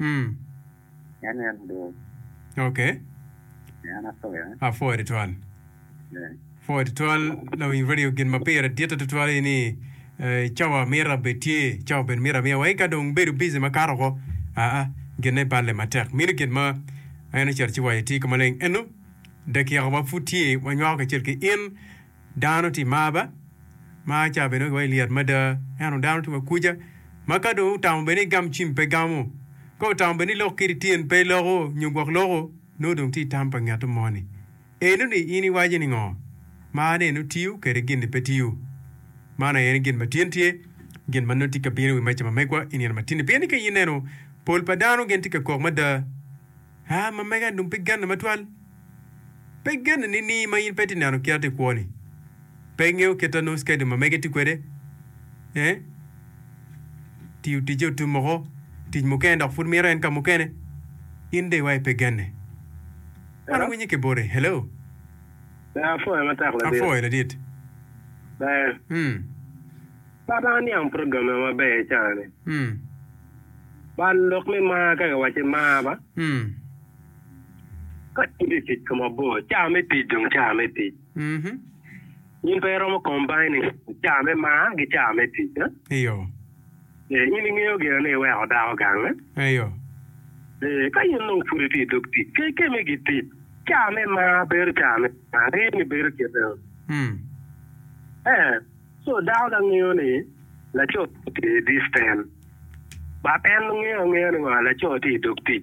Mm. En en dong. Okay. En apoya. Apoya tutwal. Yeah. Apoya tutwal lawiny radio gin ma pire ditte tutwal ni eh, cawa mira be tye, cawa ben mira miya wai ka dong bedo busy makato ko. Ah ah, ginne balle matek. Mino gin ma en ocito ci waye tye ka maleng. Eno, dakika wa pud tye, wanywako kacel ki in. Dano tye mar ba, mar ca bene wa i lyet mada. Ento dano tye wa kuca, ma ka dong otamo bene ni gam cim pe gamo, ka otamo bene ni lok kiti tyen pe loko nyo gwok loko, nongo dong tye i tam pa ngeto moni. Eno ni in iwaco ni ngo? Mar ni eno tiyo kede gin ni pe tiyo. Man aye ni gin ma tin tye, gin ma nongo tye ka bino i wi meca ma megwa i nino ma tini. Pien ni ka ineno pol pa dano gin tye ka kok mada. Aa ma mega dong pe genne matwal. Pe genne nining ma in pe ti neno kit ati kwoni? Pe ingeyo kit ta nus kadi ma mege ti kwede? Eeh. Tiyo ticce otum oko, tic mukene dok pud mito en ka mukene. In dong iwayo pe genne. Wan Hello? winye ki bote. Hello? Aa, apwoyo matek ladit. Apwoyo ladit. Ber. Hmm. Baba aniang programme maber cani. Bal lok me mar ka giwacci mar ba. Ka in i tic ka mabor, caa me tic dong caa me tic. In pe iromo combining caa me mar ki caa me tic. Eyo. Ee, in ingeyo gire ni iweko dako gange. Eyo. Ee, ka in dong pud itye i dog tic, ke, ke me gitic, caa me mar bedo caa me mar. Ingeyo ni bedo kite-ni? Ee. Co dako da ngeyo ni laco tye i disten but en ngeyo angeya ni wa laco tye i dog tic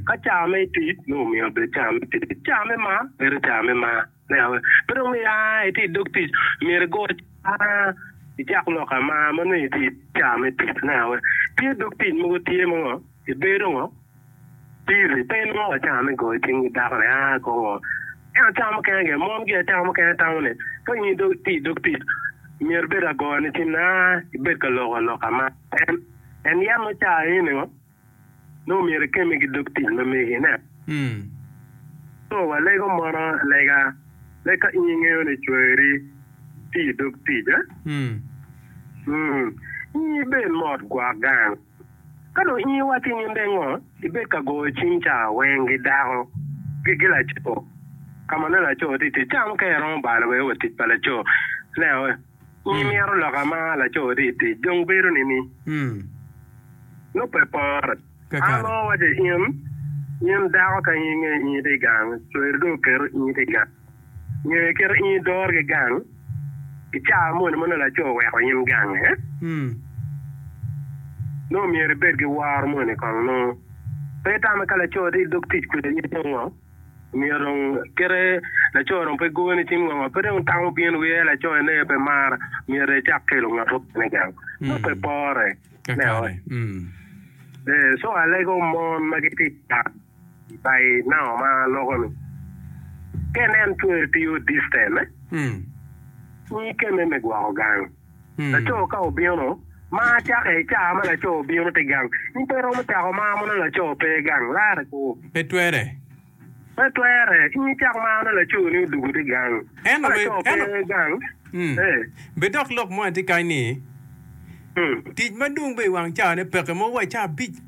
ka caa me tic nongo omiyo obed caa me tic caa me mar bedo caa me mar ne awa pe dong ni aa itye i dog tic myero igo caa icak lok amar ma nongo itye i caa me tic ne awa tye dog tic mogo tye mo Ibedo ngo? Piri pe inongo acama me goyo cing ki dako ni aa kong oo. En acama mukene gin, mon gi acama mukene tamo ni ka in idog iti i dog tic myero ibed agoyo ni cing ni aa ibed ka loko aloka ma en en yam nongo ca eni ni ngo nongo myero ikemme ki dog tic ma megi ine. Co wa lego mono lega me ka in ingeyo ni cwari ti i dog tic a? Ngi ibed mot gwok gang. Ka dong in iwaco i nyim dengo, ibed ka goyo cing ca weng gi dako gi gi laco, ka ma nongo laco tye itic, ca ma ka iromo balo wek iwe tic pa laco, leo nyi mito loka ma laco tye itic dong bedo nini? Nongo pe pore. An nongo awaco in, in dako ka in ingeyo inge tye igang, cweri dong oketo inge tye igang. Nyo iketo in idorgi gang i caa moni ma nongo laco oweko in gange? Nongo myero ibed ki woro moni kong nongo pe itame ka laco tye idog tic kwede aye dong ngo? Myero dong kite laco dong pe goni cing ngo ngo pe dong itamo bino ki ee laco eni aye pe mara myero icak kelo ngat mukene gang nongo pe pore. Ee so alego mon ma gitye i gang. By now ma loko ni. Ken en twer tiyo distance me. Nyi kene me gwoko gang. Laco ka obino ma cake ica ma laco obino ti gang, in pe iromo cako maro mono laco pe gang lare ku. Pe twere. Pe twere. In icak maro ne laco ni odugu ti gang. Ka Eno laco pe eno. gang, eh. Be dok lok mo aye ti kany ni, Tic madwong bene i wang caa ne peke mogo wa caa abic.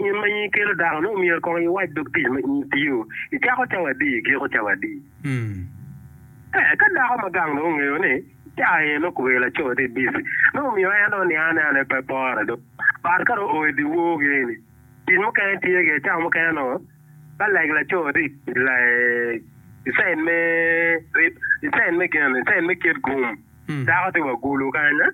In ma in ikelo dako-nu, myero kong iwac dog tic ma in itiyo i cako cawa adi, i giko cawa adi. Eka dako ma gang-nu ongeyo ni cawa aye nongo kobedi laco-ni tye bici, nongo omiyo en dong oniang ni en aye pe pore dong. But ka dong oo i dyewor geni, tic mukene tye gire, cawa mukene nongo ba leg laco tye i tic lae, i cen me, i cen me gen, i cen me ket gum, dako tye wa gulu kanya.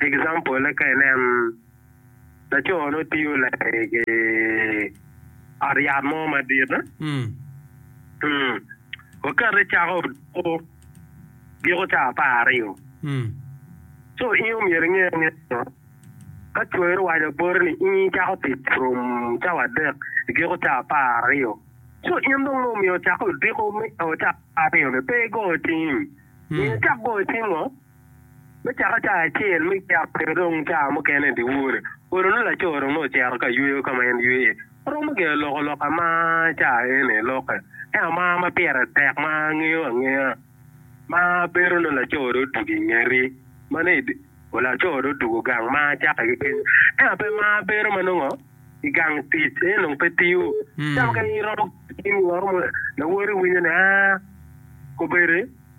Example ka inen laco nongo tiyo lageng ki ot yat mo madit wakati cako giko caa apar aryo so in omyero inge ni ka coyone owaco boti ni in icako tic from cawa adek igiko caa apar aryo so in dong nongo omyero ocak odiko me caa apar aryo ni pe igo cim myero icak go cim ngo. Me caka ca acel me cek pire dong ca mukene dyewor, olo nongo laco dong nongo ocito ka yweyo ka ma en ywe iye. Aromo gire loko lok ama ca eni lokke, ento ama ma pire tek ma angeyo angeya ma bedo nongo laco dong odwogo i ngeti ma ni laco dong odwogo gang ma cakke ki kenyo. Ento pe ma bedo ma nongo i gang tic en dong pe tiyo. Ca mukene iromo ki lok mo lawoti iwinyo ni aa, kobedi.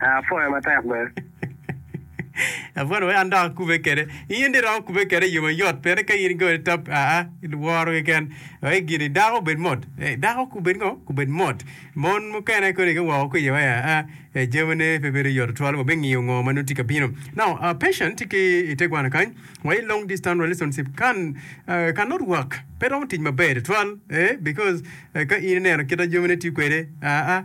Apwoya matek bene. Apwodo wek an dok akube kede. In di romo kube kede iyo mayot pire ka in go itop aa woro keken wek gini dako obed mot. Eh, dako kubed ngo? Kubed mot. Mon mukene kodi ka woko ki iyo wek aa eh, jamine pe bedo yot twal wa bingiyo ngo ma nongo tye ka bino. Now, uh, patient tye ki i te gwana kany wa i long distance relationship can, uh, can not work. Pe romo tic maber twal eh, because eh, ka in ineno kita jamine tiyo kwede aa,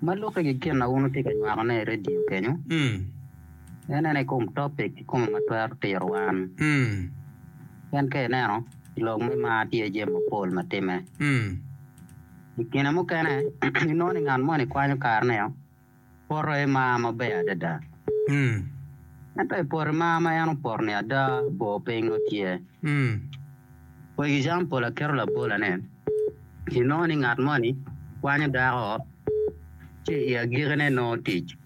Ma lukke ki gin ma wun wutye ka nywakone i redio kenyu, en ene i kom topic kikome ma twero tiro wan. Pien ka ineno, i lok me mar tye jami mapol ma timme. I kine mukene, inongo ni ngat moni kwanyo karene-o poto i mar maber adada. Ento i poto i mar ma en opoto-ni ada, bor piny nongo tye. For example, aketo labola ni. inongo ni ngat moni kwanyo dako ci i agikine nongo tic.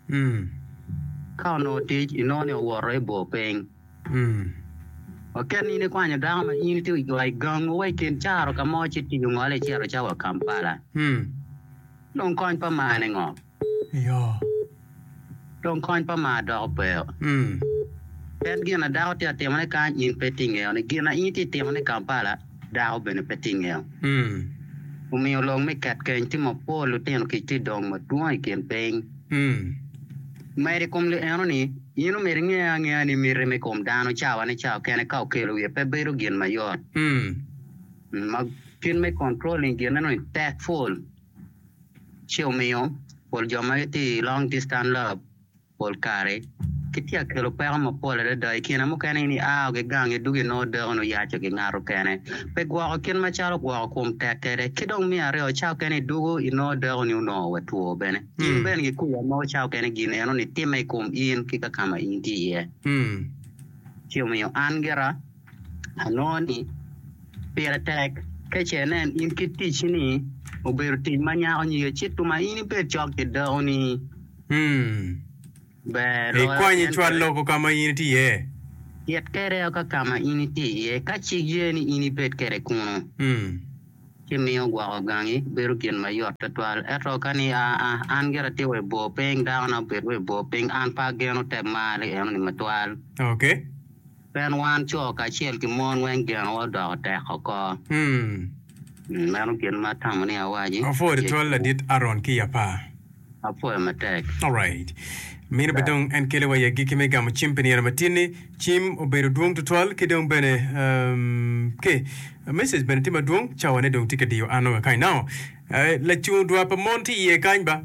Ka onongo tic, inongo ni owoto ebor piny. Waket ni in ikwanyo dako ma in itye wa i gangu wa i kin caro ka mo ci tic ongole icito cawa Kampala. Dong kony pa mane ngo? Dong kony pa mar doko peyo. Pien gin ma dako tye ka timone kany in pe itye ingeyo, ni gin ma in itye ka timone i Kampala dako bene pe tye ingeyo. Omiyo long me ket keny tye mapol, lutino kic tye ka dongo madwong i kin piny. Medo i kom li eno ni, in omyero inge angea ni miti me kom dano cawa ni cawa kene ka okelo wiye pe bedo gin mayot. Kit me controlling gin eno ni tek pol. ci omiyo pol jo ma gitye i long distan lab pol kare gitye ka kelo peko mapol adada. I kine mukene in ia wa gigang idwogo inongo deko ni oyaco gingato kene. Pe gwoko kit macalo gwoko kom tek kwede. Ki dong me aryo cawa mukene idwogo inongo deko ni onongo wa two bene. Gin bene gikubo wa mogo cawa mukene gin eno ni timme i kom in ki ka ma in itye iye. Ci omiyo an gira. Anongo ni pire tek ka ce inen in kit ticci ni obedo tic ma nyako nyige ci tuma in ibed cok ki dakoni? Ber loyo Ikwany tyen icwal kwede. lobo ka ma in itye iye. Cit kwede ka ka ma in itye iye. Ka cik ye ni in ibed kwede kunu, ci miyo gwoko gangi bedo gin ma yot twatwal. Ento ka ni, Aa, an gira atye wa i bor piny, dakona obed wa i bor piny, an pe ageno te marri enoni matwal. Ok. Pien wan co kacel ki mon weng genowa odoko tek oko. Meno gin ma atamo ni awaci. Apwoyo tutwal Ladit Aron ki i Apar. Apwoyo matek. Alright. Meno be dong en kelo wa i agikki me gamo cim pi nino matinni. Cim obedo dwong tutwal ki dong bene ke message bene tye madwong. Cawane dong tye ka diyo an nongo akany now. Lacungo dwa pa mon tye iye kany ba?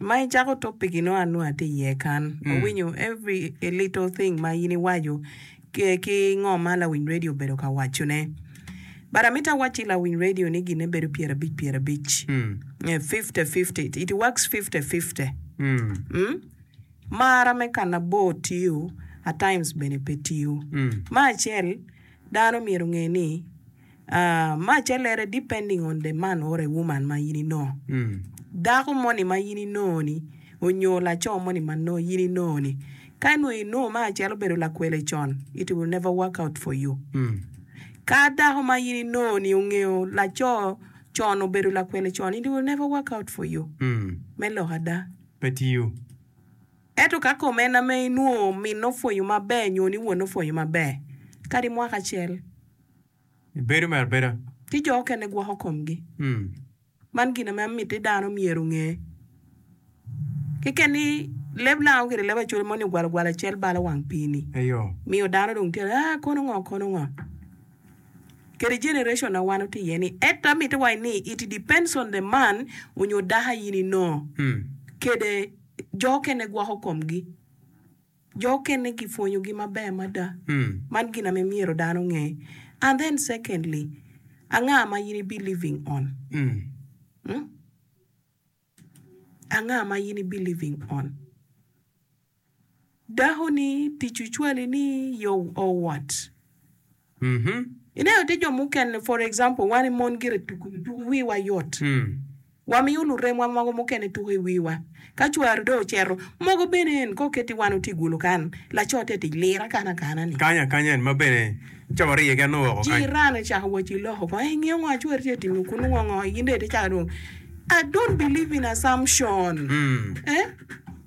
Ma icako topic-ki nongo an nongo atye iye kan. Awinyo every a little thing ma in iwaco ki, ki ngo ma lawiny radio obedo ka wacone. But amito awac ki lawiny radio ni ginne bedo pyera abic pyera abic. Eh, fifty fifty. It works fifty fifty. Mm. Marra me kan abor tiyo, at times bene pe tiyo. Me acel, dano myero onge ni, Ma callere depending on the man or a woman ma in inongo. Dako moni ma in inongo ni onyo laco moni ma in inongo ni ka nongo inongo ma acel obedo lakwele con it will never work out for you. Ka dako ma in inongo ni ongeyo laco con obedo lakwele con it will never work out for you. Me lok ada. Pe tiyo. Ento ka kom en ame inongo minne opwonyo maber nyo ni wonne opwonyo maber kadi mwaka acel. I bedo me abeda. Ci jo okene gwoko komgi. Man gin ame amiti ni dano myero onge. Keken ni leb lango kede leb acwele moni ogwalo gwala cel balo wang pii ni. Eyo. Miyo dano dong tye ah kono ngo kono ngo. Kede generation na wan watye iye ni. Eto amiti waci ni it depends on the man onyo dako aye ni no. Kede jo okene gwoko komgi. Jo okene gipwonyo gi maber mada. Man gin ame myero dano onge. And then secondly, anga ma in ibi living on? Huh? Anga ma in ibi living on? Dako ni tic ocwali ni your or what? Ineno tye jo mukene for example wan i mon gire tuku tuku wiwa yot wamiyo luremwa mogo mukene tuku i wiwa ka cwari dong oceto mogo bene en kong keti wan otye gulu kan laco tye tic lir akana akana ni Kanya kanya en ma bene ca wariye ki anongo woko kany. Jiran ocako waco iloko kong ingiyo ngo ma cwari tye ka timo kunu ngo ngo in dong itye caka dong I don't believe in assumption eh.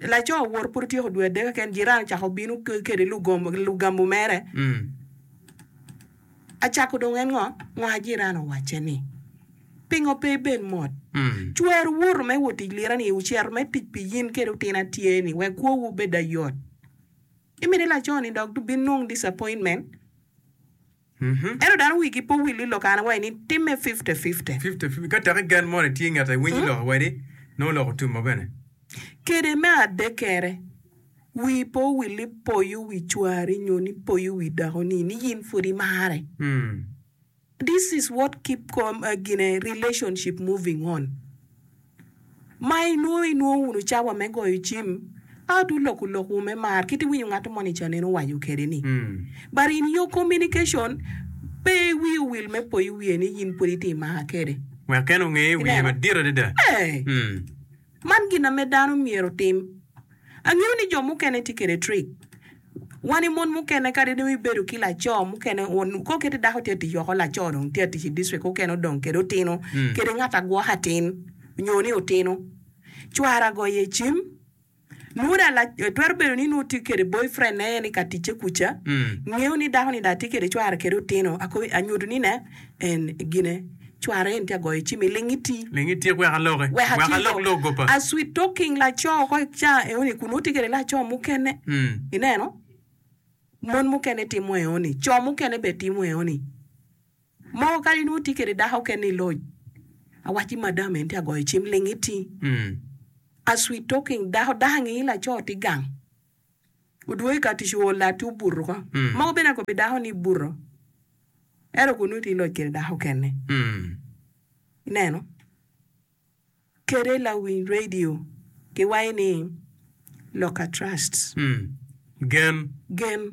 Laco owor pud otyeko dwe adek keken, jirani ocako obino kede lugambu mere. Acako dong en ngo? Ngo? Jirani owacce ni, Pingo pe ibed mot? Cwer owoto me wot tic lirani-ni, ocito me tic pi in kede otin atyeni wek kwowu obed ayot. Imito laco-ni dok binung disappointment? Ento dano wigi pe owil ni lok an awaci-ni timme fifte fifte. Ka teki gen moni tye ingeta iwinyo lok awadi, nongo lok otumma bene. Kede me adekkere, wii pe owil ni poyo wi cwari nyo ni poyo wi dakoni ni in pud imare. This is what keep gine relationship moving on. Ma inongo inongo wunu cawa me goyo cim, ento wuloko lokwu me mar kit iwinyo ngat mo ni canen owaco kede ni. But in your communication, pe iwi owil me po i wiye ni in pwod iti i maka kede. Wek en onge wiye madit adada. Ee, man gin ame dano myero otim. Angeyo ni jo mukene tye kede trick wan i mon mukene kadi dong i bedo ki laco mukene kor kiti dako tye atic woko laco dong tye atic i district mukene odong kede otino kede ngat agwoke atin nyo ni otino cwara goyo i cim nwo dong twero bedo ni nwo tye kede boy friend ne en i ka ticce kuca ngeyo ni dako ni dong atye kede cwara kede otino akobo anyutu ni ne. En gine, cware en tye ka goyo cim i ling iti. Ling itik wek aloki. Wek ati alok lok gopa. A sweet talking laco ko i ca eoni kun nongo tye kede laco mukene. Mm. Ineno? Mon mukene timo eoni. Co mukene be timo eoni. Mogo kadi nongo tye kede dako kene i loj. Awacci madam en tye ka goyo cim ling iti. Mm. A sweet talking dako dangi laco tye gang. Odwogo i ka tic ool lati obuto ko. Mogo bene akobo pi dako ni ibuto. Ento kun nongo itye iloc kwede dako kene. Ineno? Kede lawiny radio kiwayo ni Loka Trust. Gen.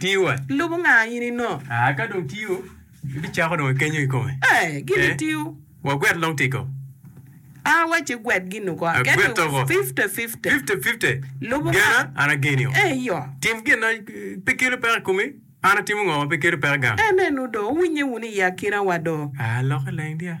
Tiyo eh. Lubo nga in ino. Ah ka dong tiyo ibicako dong ikenyo kikome. Eh gini tiyo. Wagwet long tiko. Ah wace gwet gin uko. Agwet to ko. Fifty fifty. Fifty fifty. Lubo nga. Gena an ageni o. Eh yo. Tim gin na pe kelo peko ikomi an atimo ngo ma pe kelo peko gang. Ene nu do. Wuwinye wunu i akina wa do. Ah loke leng dia.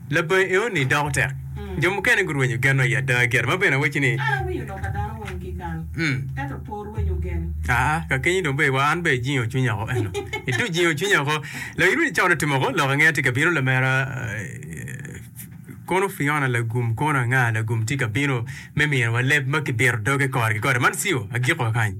Labongi eoni doko tek. Jo mukene gurwenyo genwa i ada gire ma bene awaci ni. Kara winyo lok a dano weng kikal, ento por rwenyo gen. Aa, kakeny-nyi dong bee wa an bee ijingo cwinya oko eno. Itu jingo cwinya oko. Lo iruni cawa nutimo oko lok angeya tye ka bino lamera Kono Fiona lagum kono anga lagum tye ka bino me mino wa leb ma kibito doge kore ki kore man ciu agiko kany.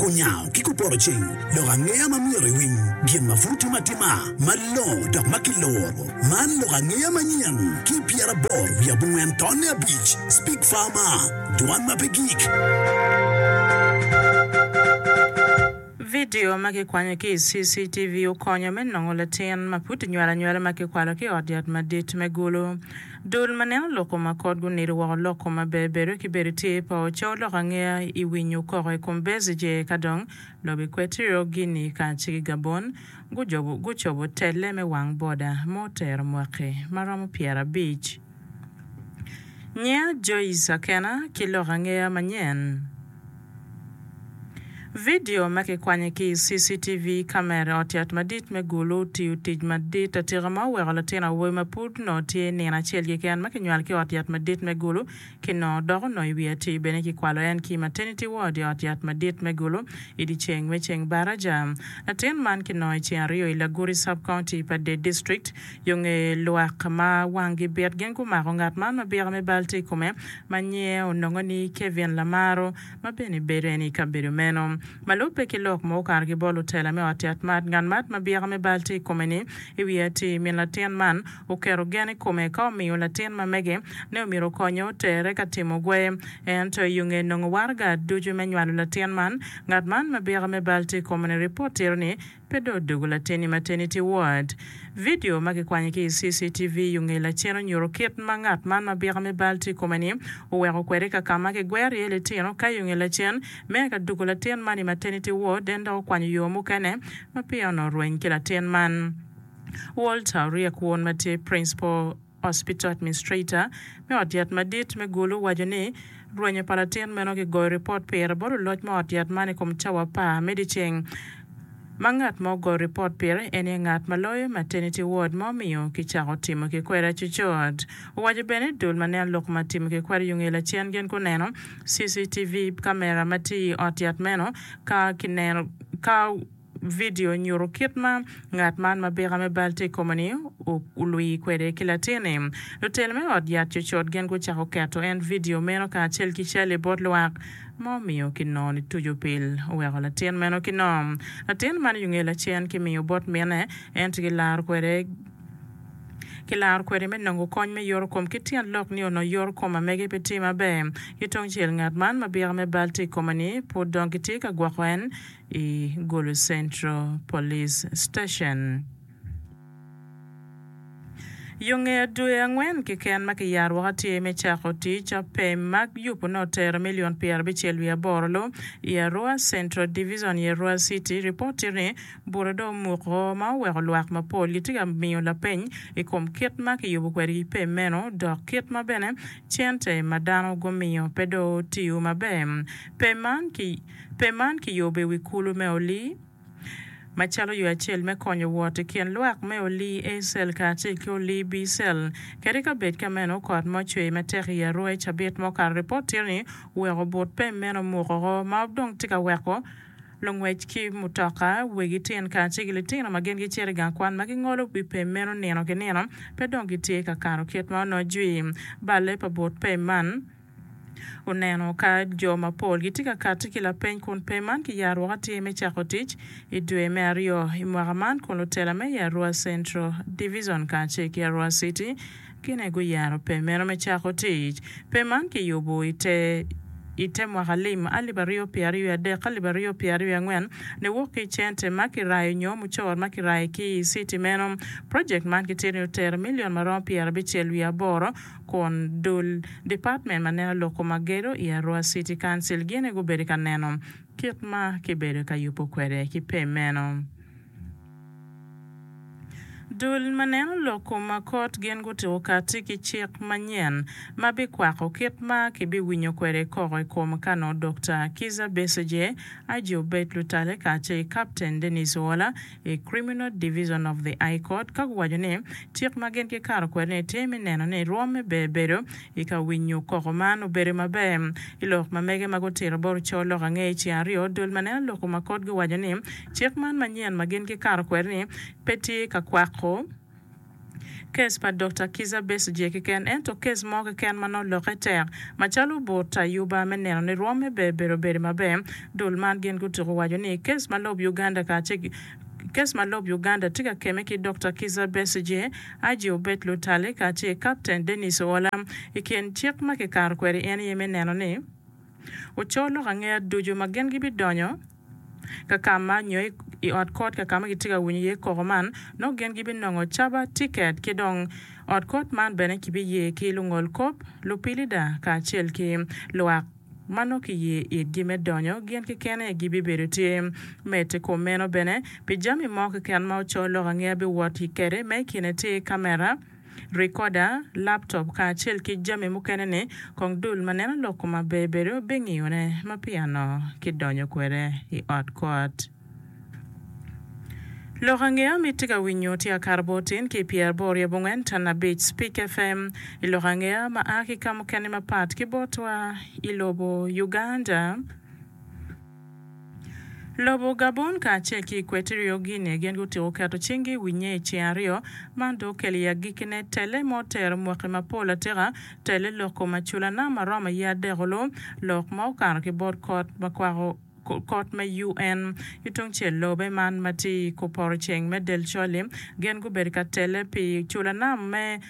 Kunyango ki kupoto ceng lok angeya ma myero iwiny gin ma pud timo atima malongo dok ma kiluro. Man lok angeya manyen ki pyeraboro wiye abongwen tonne abic, Speak Farmer, Dwan ma pe gik. Vidio ma kikwanyo ki i CCTV okonyo me nongo latin ma pud kinywelo anywela ma kikwalo ki i Ot Yat Madit me Gulu. Dul ma neno lok koma kot gunido woko lok koma ber bedo ki bedo tye pa ocow lok angeya i winyo koko i kom Bezije eka dong lobo i Kwetiro, Guinea kace ki Gabon gujobo gucobo telle me wang boda ma otero mwaki ma romo pyera abic. Nyia Joyce Akena ki lok angeya manyen. Vidio ma kikwanyo ki i CCTV kamera ot yat madit me Gulu otiyo tic madit atika ma oweko latin awobi ma pud nongo tye i nino acel keken ma kinywalo ki i ot yat madit me Gulu ki nongo dok onongo i wi atir bene kikwalo en ki i maternity ward i ot yat madit me Gulu i dyeceng me ceng baraja. Latin man kinongo i ceng aryo i Laguri Sub-County pa Dade District Yo nge lwak ma wanggi bit gin gumako ngat man ma bira me bal tye i kome ma nyinge onongo ni Kevin Lamaro ma bene bedo en i kabedo meno. Ma lubbe ki lok mogo okato ki bot lutela me ot yat mat, ngat mat ma bira me bal tye i kome ni i wi atir min latin man oketo gen i kome ka omiyo latin ma mege ne omyero okonye otere ka timo gwe. Ento yo nge nongo waraga ducu me nywalo latin man, ngat man ma bira me bal tye i kome ni ripot tito ni Pe dong odogo lateni mateni tye wat. Vidio ma kikwanyo ki i CCTV i ongee lacen onyuto kit ma ngat man ma bika me bal tye i kome-ni oweko kwede i kakama kigwero iye litino ka i ongee lacen me eka dugo latin man i mateni tye ward en dok okwanyo yo mukene ma peya onongo rweny ki latin man. Walter Oryek won ma tye Principal. Hospital Administrator me ot yat madit me Gulu owaco ni, Rwenyo pa latin meno kigoyo ripot pire bot luloc me ot yat man i kom cawa apar me dyeceng, ma ngat ma ogoyo ripot pire en aye ngat ma loyo maternity ward ma omiyo kicako timo kikweri acucut. Owaco bene ni dul ma neno lok ma timo kikweri yung i lacen gin guneno CCTV kamera ma tye i ot yat meno ka kineno ka Vidio nyuto kit ma ngat man ma bika me bal tye i kome-ni olwii kwede ki latinne. Lutelo me ot yat cutcut gin gucako keto en vidio meno kacel ki cal-li bot lwak, ma omiyo kinongo nituco pil oweko latin meno ki nom. Latin man yunge lacen kimiyo bot minne, ento kilaro kwede kilaro kwede me nongo kony me yoto kom ki tyen lok ni onongo yoto kom ma mege pe tye maber. Ki tungcel, ngat man ma bika me bal tye i kome-ni pud dong kitye ka gwoko en i Gulu Central Police Station. Yo ngeya dwe angwen keken ma kiyaro woko atir me cako tic pem ma yubone otero milion pyerabicel wiye aboro lo i Arua Central Divizon i Arua City, ripot tye ni bute dong omuko ma oweko lwak mapol gitye ka miyo lapeny i kom kit ma kiyubo kwedgi pem meno dok kit ma bene cente ma dano gumiyo pe dong tiyo maber. Pem man ki. Pem man kiyubo i wi kulu me oli macalo yo acel me konyo wot i kin lwak me oli A cell kacel ki oli B cell. Kadi ka bed ka meno, kot ma ocwer matek i Arua i cabit ma okato ripot tye ni oweko but pem meno mukoko ma dong tye ka weko lungwec ki mutoka, wegi tyen kacel ki litino ma gin gicito i gang kwan ma gingolo wi pem meno nino ki nino pe dong gitye ka kano kit ma onojwi. Balle pa but pem man. oneno ka jo mapol gitye ka kati ki lapeny kun peny man ki yaro woko atir me cako tic i dwe me aryo i mwaka man kun lutela me i Arua Central Divizon kacel ki Arua City gine guyaro peny meno me cako tic. Peny man ki yubu i te i te mwaka lim alip aryo pye aryo adek ki alip aryo pye aryo angwen ne wok ki i cente ma ki rayo nyo mucoro ma ki rayo ki i city meno. Project man ki tito ni otero million maromo pyera bicel wiye aboro kun dul Department ma neno loko ma gedo i Arua City Council gine gubedo ka neno kit ma kibedo ka yubo kwede ki pe meno. Dul ma neno loko ma kot gin gutuko kati ki cik manyen ma bikwako kit ma kibiwinyo kwede koko i kom ka nongo Dokta Kizza Besigye, IG Obed Lutale kacel ki Kapten Denis Oola i Criminal Division of the High Court ka guwaco ni cik ma gin gikato kwede-ni tye me neno ni rwom me ber bedo i ka winyo koko man obedo maber. I lok ma mege ma gutito bot oco lok ange i ceng aryo, dul ma neno lok-gu ma kotgi owaco ni cik man manyen ma gin gikato kwede-ni pe tye ka kwako Kes pa Dokta Kizza Besigye keken ento kes mo keken ma nongo lokke tek macalo but ayuba me neno ni rwomme ber bedo obedo maber. Dul man gin gutuko waco ni kes ma lob Uganda kacel ki kes ma lob Uganda tye ka kemme ki Dokta Kizza Besigye, IG Obed Lutale kacel Kapten Denis Oola i kin cik ma kikato kwede en aye me neno ni oco lok angea ducu ma gin gibidonyo ka ka ma nyo i ot kot ka ka ma kitye ka winyo iye koko man, nongo gin gibinongo caba, tiket, ki dong ot kot man bene kibiye ki lungol kop, lupilida kacel ki lwak ma nongo kiye itgi me donyo gin keken aye gibibedo tye. Mete kom meno bene, pi jami mo keken ma oco lok angeya biwot i kede ma i kine tye kamera, rikoda, laptop kacel ki jami mukene-ni, kong dul ma neno lok koma ber bedo bingiyone ma piano kidonyo kwede i ot kot. Lok ange ami tye ka winyo tye akato bor tin ki pyer aboro ryo abongwen tan abic Speak FM i lok ange ma a ki kamukene mapat ki botwa i lobo Uganda. Lobo Gabon kacel ki Equatorial Guinea gin gutyeko keto cinggi i wi nye i ceng aryo. Man dong okelo i agikkine telle ma otero mwaki mapol atika, telle lok kom aculana ma romo aye adekulu, lok ma okato ki bot kot ma kwako kot me UN. Ki tungcel lobe man ma tye i kor poto ceng me Delcholim gin gubedo ka telle pi culana me.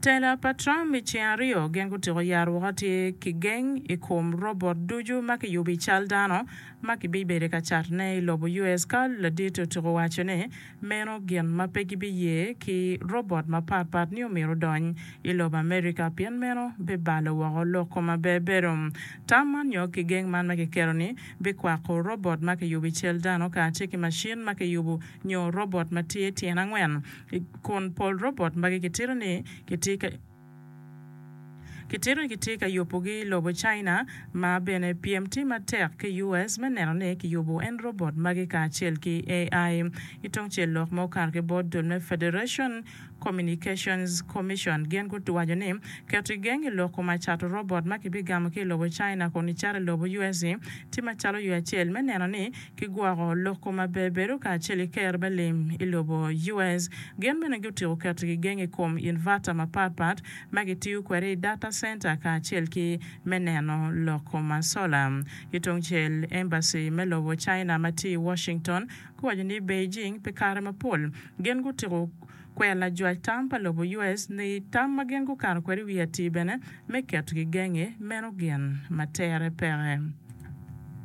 Tela pa Trump i ceng aryo gin gutyeko yaro woko atir ki geng i kom robot ducu ma kiyubo i cal dano ma kibibedo ka catone i lobo US ka ladit otyeko waco ni meno gin ma pe gibiye ki robot mapat pat ni omyero odony i lobo America pien meno bibalo woko lok kom aberbedo. Tam man nyo ki geng man ma kiketo ni bikwako robot ma kiyubo i cal dano kacel ki macin ma kiyubo nyo robot ma tye tyen angwen, kun pol robot magi kitito ni kitye ka yubogi i lobo China, ma bene pyem tye matek ki US me neno ni kiyubo en robot magi kacel ki AI. Ki tung cel lok ma okato ki bot dul me Federation Communications Commission gin guwaco ni keto i gengi lok koma cato robot ma kibigamo ki i lobo China kun icato i lobo US-ci tye macalo yo acel me neno ni ki gwoko loko maber bedo kacel i ker me lim i lobo US. Gin bene gutiko keto gigeng i kom inverter mapat pat ma kitiyo kwede i data center kacel ki me neno loko ma sola. Ki tungcel, embassy me lobo China ma tye i Washington guwaco ni Beijing pi kare mapol gin gutiko kwero lajwac tam pa lobo US ni tam ma gin gukato kwede i wi atir bene me keto gigeng-ngi meno gin ma tere peke.